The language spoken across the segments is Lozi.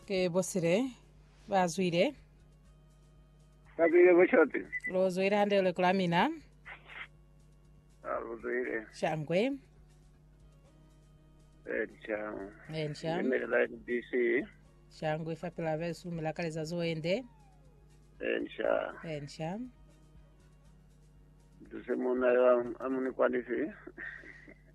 Ke bosile ba zwile. Kabile boshoti. Lo zwile hande le kula mina. Aluzwile. Shangwe. Elisha. Elisha. Nimelela NBC. Shangwe fapila besu milakaleza zoende. Elisha. Elisha. Duse muna yo amunikwanisi.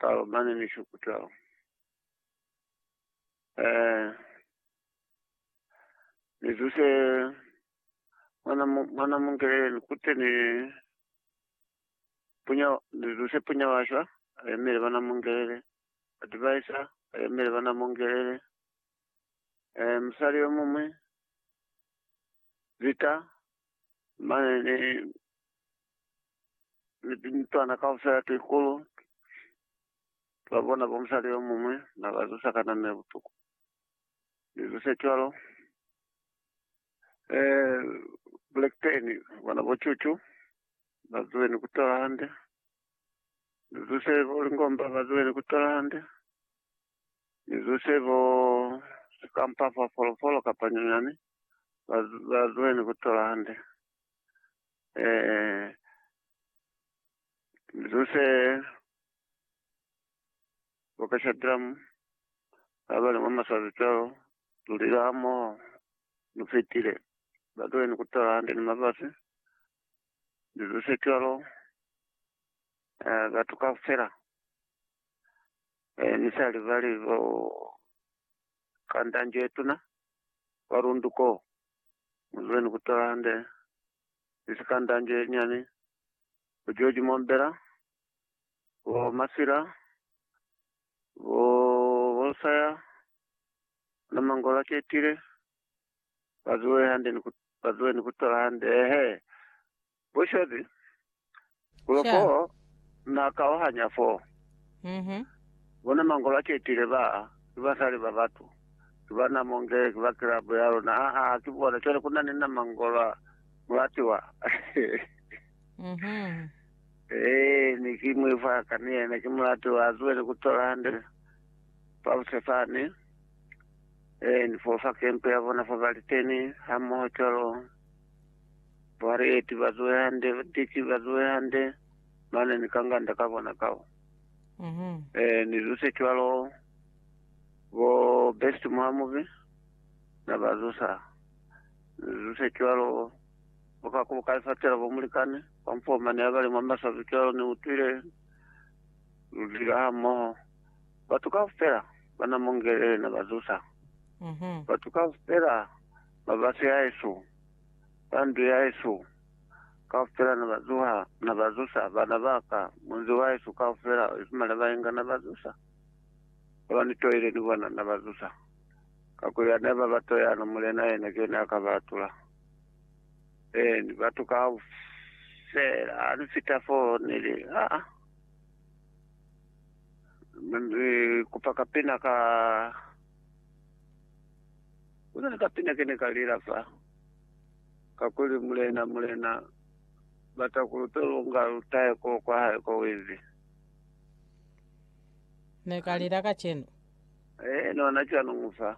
Kalo mane ni shukutao. Eh, ni zuse mwana mwana mungele ni kute ni punya ni zuse punya washwa ayemele bana mungelele advisor ayemele bana mungelele eh musali yo mumwe vita mane ni ni pincwana kaufela ti kulu twa bona bo musali yo muñwi na ba zusa ka nano ye butuku. Ni zuse cwalo. Eh, Blackburn, bona bo Chuchu, ba zuwe ni kutola hande. Ni zuse bo Lingomba, ba zuwe ni kutola hande. Ni zuse bo sikampa fa folofolo kapa nyonyani, ba, ba zuwe ni kutola hande. Eh, Nzo se boka Shadram, abali mwa masazi cwalo, lulile hamoho, nu fitile, batule ni kutala hande ni mabasi, Nzo se cwalo, eh, batu kaufela, Eh, ni sa libali bo kanda njo ye tuna kwa lundu ko. Muzule ni kutola hande ni si kanda njo ye nyani, bo George Mombela, bo Masila, bo Bosaya, na Mangola Ketile, bazuwe hande ni ku, bazuwe ni kutola hande, ehe, bo Shozi, Loko na kauhanya fo, bona mangolo a ketile ba ki basali ba batu, ki ba namo nge ki ba kilabu ya luna. Ha, ha, ki bona. Cwale ku na ni na mangolo a mulatiwa. Ee, ni ki mwi fa ka ni yena. Ki mulatiwa. A zuwe ni ku tola hande fabuse fani. Ee, ni fo fa kempe ya bona fa ba liteni hamoho cwalo. Bwale eti bazuhe hande, tiki bazuhe hande, mane ni kanganda ka bona kao. Mhm. Eh, ni zuse cwalo, bo Best Mwamubi, na ba zusa. Ni zuse cwalo, bo Kakubo ka Lifatela, bo Mulikani, kwa mfo mane ya bali mwa maswabi cwalo, ni utwile lu lila ha moho. Batu kaufela ba na Mongele, na ba zusa. Mhm. Batu kaufela ba ba sihaesu. ba ndu yahesu kaufela na ba zuha, na ba zusa bana ba ka, munzi wahesu kaufela, isima na bainga na ba zusa, ba ba ni toile ni bona na ba zusa, kakuli ha ne ba ba toyana, Mulena yena ki yena ya ka ba atula. Eeni, batu kaufela, ha ni fita fo, ni li, Aa, ni kupa kapina ka. Kona ni kapina ke ne ka lila fa, kakuli, Mulena, Mulena, bata kuli uto longa lutahe ko kwa hae ko wizi. Ne ka lila kacenu. Eh, nona cwanu fa.